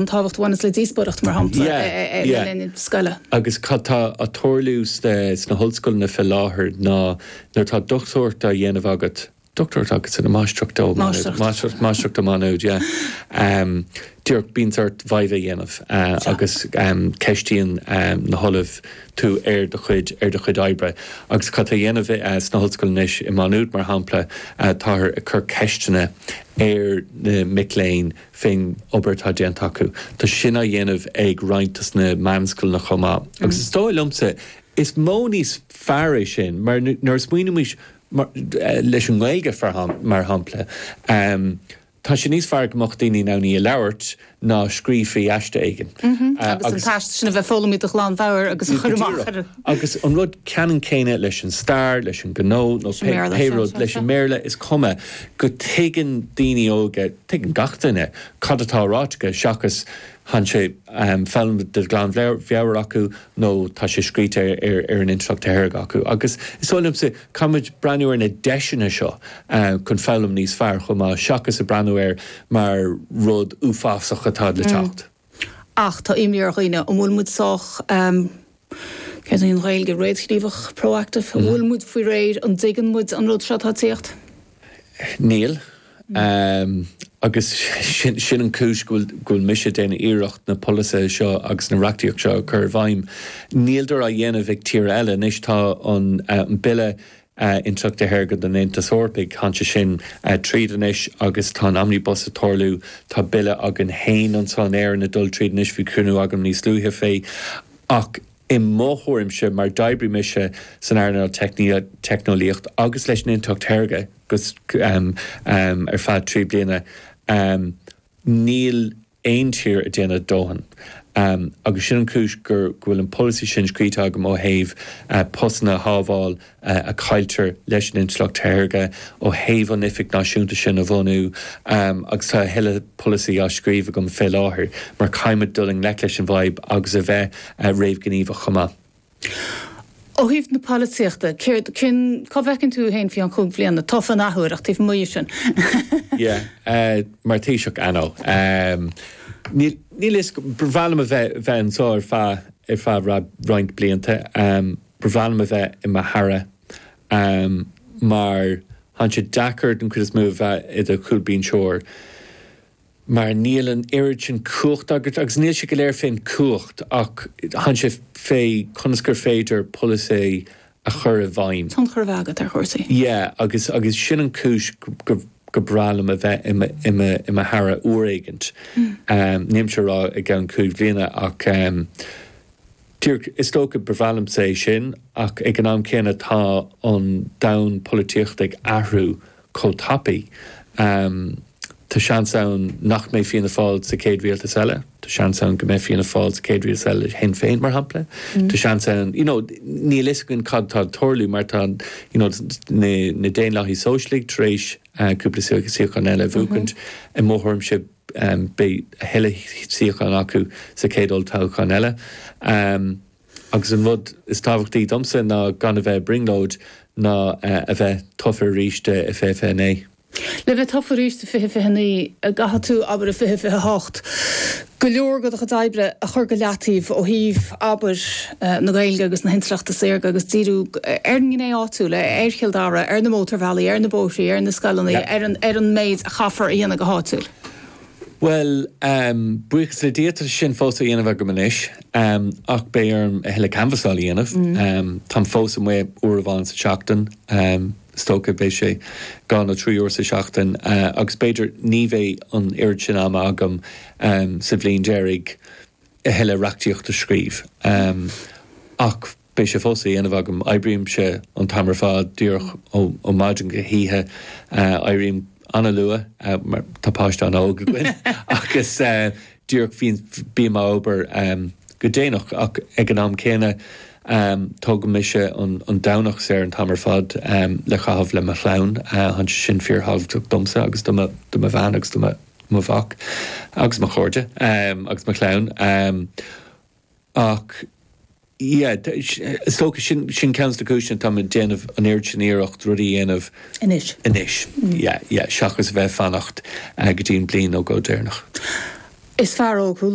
an tábhacht a bhaineas le díospóireacht, mar shampla, le linn scoile. Agus cad tá á tarlú sna hollscoileanna fé láthair ná nuair atá dochtúireacht á dhéanamh agat, dochtúireacht agat san, máistreacht ó, máistreacht, máistreacht, máistreacht ó Mhá Nuad, yeah, díreach bíonns ort viva a dhéanamh agus ceistíonn na hollaimh tú ar do chuid, ar do chuid oibre. Agus cad tá á dhéanamh sna hollscoileanna anois, i Má Nuad, mar shampla, táthar ag cur ceisteanna ar na mic léinn, faoin obair atá déanta acu. Tá sin á dhéanamh ag roinnt de na meánscoileanna chomh maith. Agus is dóigh liomsa, is modh níos fearr é sin, mar nuair a smaoinímid, leis an nGaeilge mar shampla, tá sé níos fearr go mbeadh daoine in ann í a labhairt ná scríobh faoi aiste éigin. Agus an t-aiste sin a bheith foghlamtha de ghlan mheabhair agus a chur amach. Agus an rud ceannann céanna leis an stair, leis an ghnó nó pé rud, leis an mBéarla, is cuma go dtuigeann daoine óga, Tuigeann gach duine cad atá ráite acu seachas, tá sé foghlamtha de ghlanmheabhair acu nó tá sé scríte ar an intleacht shaorga acu. Agus is dóigh liomsa, caithfidh muid breathnú ar na deiseanna seo chun foghlaim níos fearr chomh maith seachas a breathnú air mar rud uafásach atá le teacht. Ach tá imní ar dhaoine, an bhfuil muid sách, céard í an Ghaeilge, réamhghníomhach, proactive? An bhfuil muid faoi réir, an dtuigeann muid an rud seo atá ag tíocht? Níl. Agus sin an chúis go bhfuil mise ag déanamh iarracht na polasaithe seo agus na reachtaíocht seo a chur i bhfeidhm. Níltear á dhéanamh ag tíortha eile. Anois tá an bille intleachta saorga den Aontas Eorpach. Tháinig sé sin tríd anois agus tá an omnibus ag tarlú. Tá Bille againn féin anseo in Éirinn ag dul tríd anois, bhí cruinniú agam níos luaithe fé, ach i mo thuairimse, mar d'oibrigh mise san earnáil teicneolaíocht agus leis an intleacht shaorga ar feadh trí bliana, Níl aon tír ag déanamh a dóthain agus sin an chúis go bhfuil an polasaí sin scríte agam ó thaobh postanna a shábháil a chailltear leis an intleacht shaorga, ó thaobh an oifig náisiúnta sin a bhunú agus tá a thuilleadh polasaí á scríobh agam fé láthair mar caithfidh muid dul i ngleic leis an bhfadhb agus a bheith réamhghníomhach chomh maith. Ó thaobh na polaitíochta, céard, cén, cá bhfeiceann tú féin faoi cheann cúig bliana tofa an athuair agus taobh amuigh dhe sin? Yeah, mar Thaoiseach, ah no. Níl a fhios, ba bhreá liom a bheith, bheith anseo ar feadh, ar feadh roinnt blianta. Ba bhreá liom a bheith i mo hAire mar tá sé deacair den chuid is mó a bheith i do chúlbhinseoir. mar níl an oiread sin cumhachta agat, agus níl sé go léir fén gcumhacht, ach baineann sé fé conas gur féidir polasaí a chur i bhfeidhm. tionchar a bheith agat ar chúrsaí. Yeah, agus, agus sin an chúis gur bhreá liom a bheith i mo, i mo, i mo Aire uair éigint, nílimse a rá i gceann cúig bhliana ach díreach, is dócha, ba bhreá liomsa é sin ach ag an am céanna tá an domhan polaitíochta ag athrú chomh tapaidh. Tá seans ann nach mbeidh Fianna Fáil sa chéad rialtas eile. Tá seans ann go mbeidh Fianna Fáil sa chéad rialtas eile le Sinn Féin, mar shampla. Tá seans ann, you know, níl a fhios againn cad atá ag tarlú mar tá, you know, na Daonlathaithe Sóisialta tar éis cúpla suíochán eile a bhuachaint. I mo thuairimse beidh a thuilleadh suíochán acu sa chéad olltoghchán eile. Agus an rud is tábhachtaí domsa ná gan a bheith ag brionglóid ná a bheith tofa arís i 2029. Le bheith tofa arís i 2029, caithfidh tú, abair i 2028, go leor de do chuid oibre a chur go leataobh ó thaobh, abair, na Gaeilge agus na hintleachta saorga agus díriú ar an ngné áitiúil, ar Chill Dara, ar na mótarbhealaí, ar na bóithre, ar na scoileanna, ar an méid a chaithfear a dhéanamh go háitiúil. Bhuel, buíochas le Dia, tá sin fós á dhéanamh agam anois, ach beidh orm a thuilleadh canbhasála a dhéanamh. Táim fós amuigh uair amháin sa tseachtain, is dócha, beidh sé dhá nó trí uair sa tseachtain, agus b'fhéidir ní bheidh an oiread sin ama agam sa bhliain deiridh a thuilleadh reachtaíochta a scríobh. Ach. Beidh sé fós á dhéanamh agam. Oibrímse an t-am ar fad, díreach ó maidin go hoíche. Éirím an-luath, mar tá páiste an-óg againn, agus díreach bím ag obair go déanach. Ach ag an am céanna, tógaimse an Domhnach saor an t-am ar fad le caitheamh le mo chlann. Sin fíorthábhachtach domsa agus do mo bhean agus do mo mhac agus mo chairde agus mo chlann. Ach, yeah, is dócha, sin, sin ceann de na cúiseanna atá mé ag déanamh an oiread sin iarracht rudaí a dhéanamh anois, anois, yeah, yeah, seachas a bheith ag fanacht go dtí an bhliain nó dhó deireanach. Is fearr óg thú,